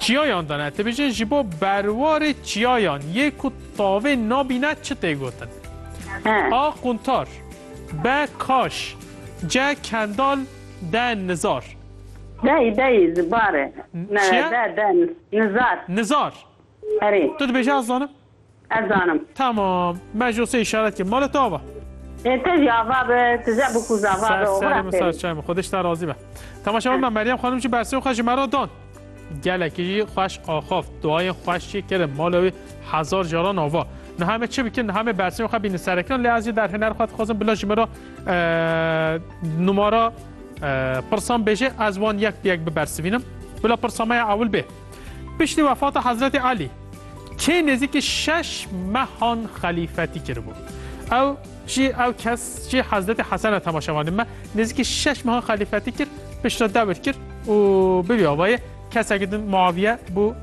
Çiyayan dane ti bijî ji bo berwarê çiyayan yê ku tavê nabîne çi tê gotin? A quntar B kaş C kendal D nizar Dey dey zibare Çiye? D D nizar Nizar Erê Tu dibêjî ez zanim Ez zanim. Tamam. Me ji Osê îşaret kir. Mala tu ava. Ê te jî ava be. Tu je bû ku zava be. Ser serê min sar çay min. Xwedê ji te razî be. Temaşa bime Meryem xanim jî bersên xwe ji me re dan. Gelekî jî xweş axaft. Duayên xweş jî kirin. Mala wî hezar caran ava. Niha me çi bikin? Niha me bersên xwe bînin serekiran lê ez jî derhêner xwe dixwazim bila ji min re numara pirsan bêje ez wan yek bi yek bibersivînim. Bila pirsa me ya ewil bê. Piştî wefata Hezretê Elî kê nêzîkî şeş mehan xelîfetî kiribû. Ew jî ew kes jî Hezretê Hesen e temaşevanê me nêzîkî şeş mehan xelîfetî kir, pişt re dewir kir û bi vî avayê kesekî din Muaviye bû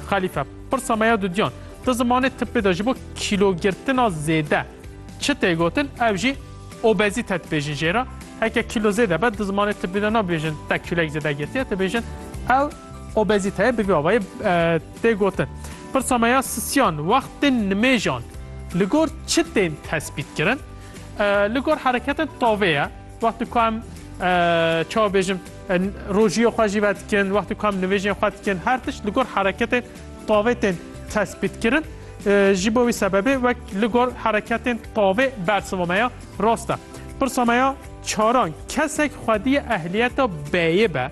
xelîfe. Pirsa me ya dudiyan, di zimanê tibbê de ji bo kîlogirtina zêde çi tê gotin ew jî, Obezîte dibêjin jê re. Heke kîlo zêde be di zimanê tibî de nabêjin te kîloyek zêde girtiye, dibêjin ew obezîteye bi vî avayê tê gotin. Pirsa me ya sisiyan, wextên nimêjan li gor çi tên tesbîtkirin? Li gor hereketên tavê ye. Wextê ku em çawa bêjim rojiyê xwe jî vedikin, wextê ku em nivêjên xwe dikin, her tişt li gor hereketên Qavêtên tespîtkirin jî bo wî sebebê wek li gor hereketên qavê bersiva me ya rast e. Pirsa me ya çaran kesek xwediyê ehliyeta B'yê be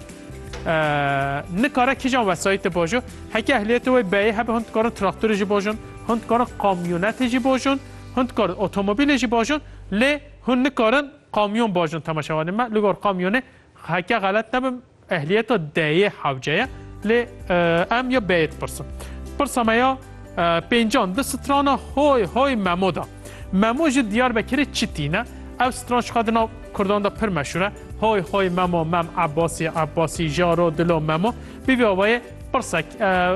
nikare kîjan wesayîtê bajo? Heke ehliyetê wê B'yê hebe hûn dikarin traktorê jî bajin, hûn dikarin kamyonetê jî bajin, hûn dikarin otomobîlê jî bajin lê hûn nikarin kamyon bajin. Temaşevanên me li gor kamyonê heke xelet nebim Ehliyeta D yê hewce ye lê em ya B yê dipirsin. Pirsa me ya pêncan di strana hoy hoy memo de. Memo ji Diyarbekirê çi tîne? Ev stran jixwe di nav kurdan de pir meşhur e. Hoy hoy memo mem Abbasî Abbasî jaro dilo memo. Bîvî avayê pirsek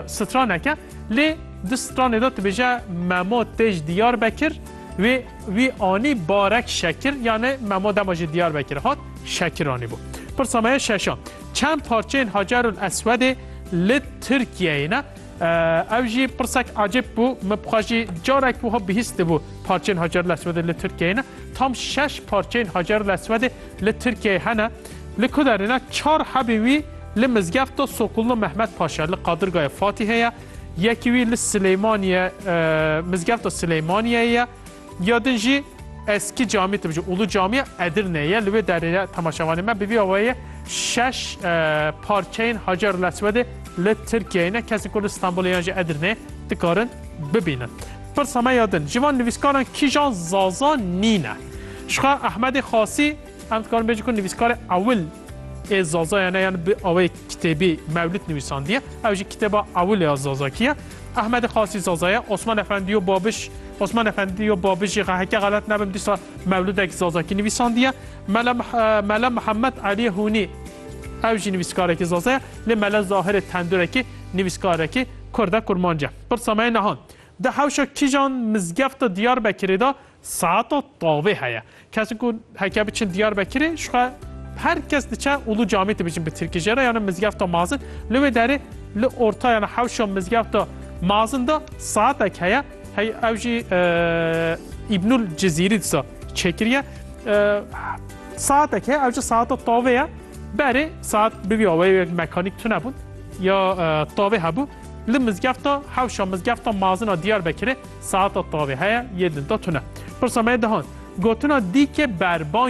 straneke lê di stranê de dibêje memo tê ji Diyarbekir wê Wî anî barek şekir yanê Memo dema ji Diyarbekir hat şekir anîbû. Pirsa me ye şeşan. Çend parçeyên Hacerul Eswedê li Tirkiyeyê ne? Ew jî pirsek ecêb bû. Min bixwe jî carek wiha bihîstibû parçeyên Hacerul Eswedê li Tirkiyeyê ne. Tam şeş parçeyên Hacerul Eswedê li Tirkiyeyê hene. Li ku derê ne çar hebên wî li mizgefta Sokullu Mehmet Paşa li Qadirgayê Fatîhê ye. Yekî wî li Silêmaniye mizgefta Silêmaniyeyê ye. Ya din jî eskî camî tibicî ûlu camiya Edirneyê ye. Li wê derê ye temaşevanê me bi vî awayê şeş parçeyên Hacer Leswedê li Tirkiyeyê ne kesên ku li Stenbolê yan jî Edirneyê dikarin bibînin. Pirsa me ya din ji van nivîskaran kîjan zaza nîne? Jixwe Ehmedê Xasî Em dikarin bêjin ku nivîskarê ewil ê Zazayê ne yan bi awayê kitêbî Mewlid nivîsandiye. Ew jî kitêba ewil ya Zazakî ye. Ehmedê Qasî Zaza ye. Osman Efendî û Babiş Osman Efendî û Babiş jî heke xelet nebim dîsa Mewlidek Zazakî nivîsandiye. Mele Mele Mihemed Elî Hûnî ew jî nivîskarekî Zaza ye. Lê Mele Zahirê Tendurekî nivîskarekî Kurd e, kurmanc e. Pirsa me ye niha, Di hewşa kîjan mizgefta Diyarbekirê de Saeta tavê heye. Kesên ku heke biçin Diyarbekirê ji xwe her kes diçe û li camê dibijin bi tirkî jê re yan li mizgefta mazin. Li wê derê li orta yan hewşa mizgefta mazin de saetek heye. Hey ew jî Îbnul Cizîrî disa çêkiriye. Saetek heye ew jî saeta tavê ye. Berê saet bibîya wê mekanîk tune bûn ya tavê hebû. Li mizgefta hewşa mizgefta mazina Diyarbekirê saeta tavê heye yê dinta tune. Pirsa me dihand gotina dîkê berban